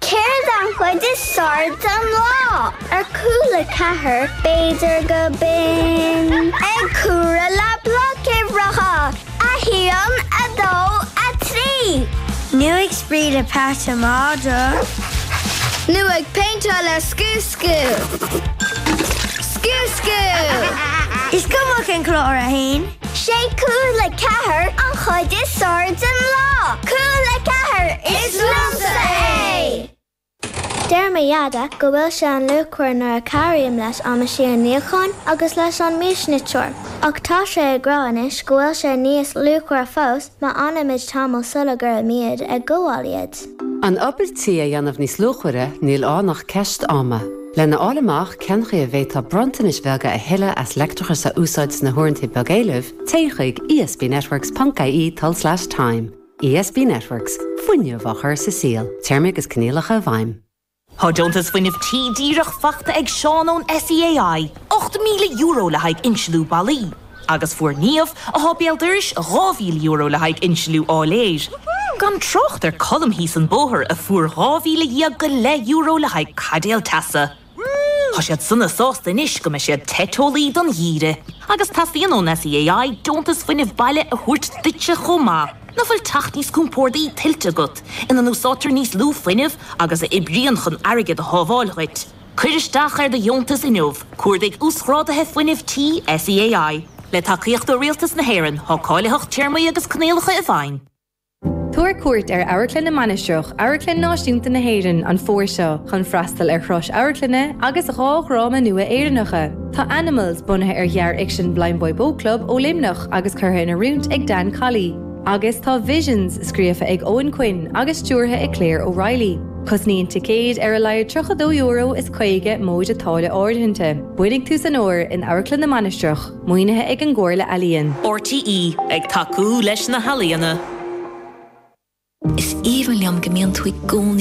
Céard é an chuid is fearr den lá? Ar Cúla4 b'fhéidir go binn. Ag comhaireamh le bloic uimhreacha, a haon, a dó, a trí. Nú ag spraoi le peata madra. Nú ag péinteáil ar scúscú. Scúscú! Is cuma cén clár é. Sé Cúla4 an chuid is fearr den lá. Cúla4, is liomsa é! Deir mo Dheaide go bhfuil sé an-luachmhar nuair a chabhraím leis an meaisín níocháin agus leis an miasniteoir, ach tá sé ag rá anois go bhfuil sé níos luachmhaire fós má fhanaimid tamall sula gcuirimid ag gabháil iad. An obair tí a dhéanamh níos luachmhaire, níl ann ach ceist ama. Lena fháil amach cén chaoi a bhféadfá bronntanais bheaga a thuilleamh as leictreachas a úsáid sna huaireanta beag éilimh, téigh chuig esbnetworks.ie/time. ESB Networks, fuinneamh á chur sa saol, téarmaí agus coinníollacha i bhfeidhm. Tá deontas Fuinneamh Tí díreach faighte ag Seán ón SEAI, €8,000 le haghaidh insliú ballaí, agus fuair Niamh, atá béal dorais, €2,000 le haghaidh insliú áiléir. Gan trácht ar Colm thíos an bóthar a fuair dhá mhíle dhéag go leith euro le haghaidh caidéal teasa. Tá siad sona sásta anois go mbeidh siad te teolaí don gheimhreadh. Agus teastaíonn ón SEAI deontas Fuinneamh Baile a thabhairt duitse chomh maith. Nach bhfuil teach níos compórdaí tuillte agat, ina n-úsáidtear níos lú fuinnimh agus a oibríonn chun airgead a shábháil dhuit? Cuir isteach ar do dheontas inniu, cuardaigh Uasghráduithe Fuinnimh Tí SEAI. Le tacaíocht ó Rialtas na hÉireann, tá cáilitheacht téarmaí agus coinníollacha i bhfeidhm. Tabhair cuairt ar Amharclann na Mainistreach, Amharclann Náisiúnta na hÉireann, an fómhar seo chun freastal ar thuras amharclainne agus dhá dhráma nua Éireannacha. Tá Animals bunaithe ar ghearrfhicsean Blindboy Boatclub ó Luimneach agus curtha in oiriúint ag Dan Colley, agus tá Visions scríofa ag Eoin Quinn agus stiúrtha ag Claire O'Reilly. Cosnaíonn ticéid ar a laghad €32 is 50 móide táille áirithinte. Bain do shuan as in Amharclann na Mainistreach, maoinithe ag an gComhairle Ealaíon. RTÉ ag tacú leis na healaíona. Is aoibhinn liom go mbíonn tú i gcónaí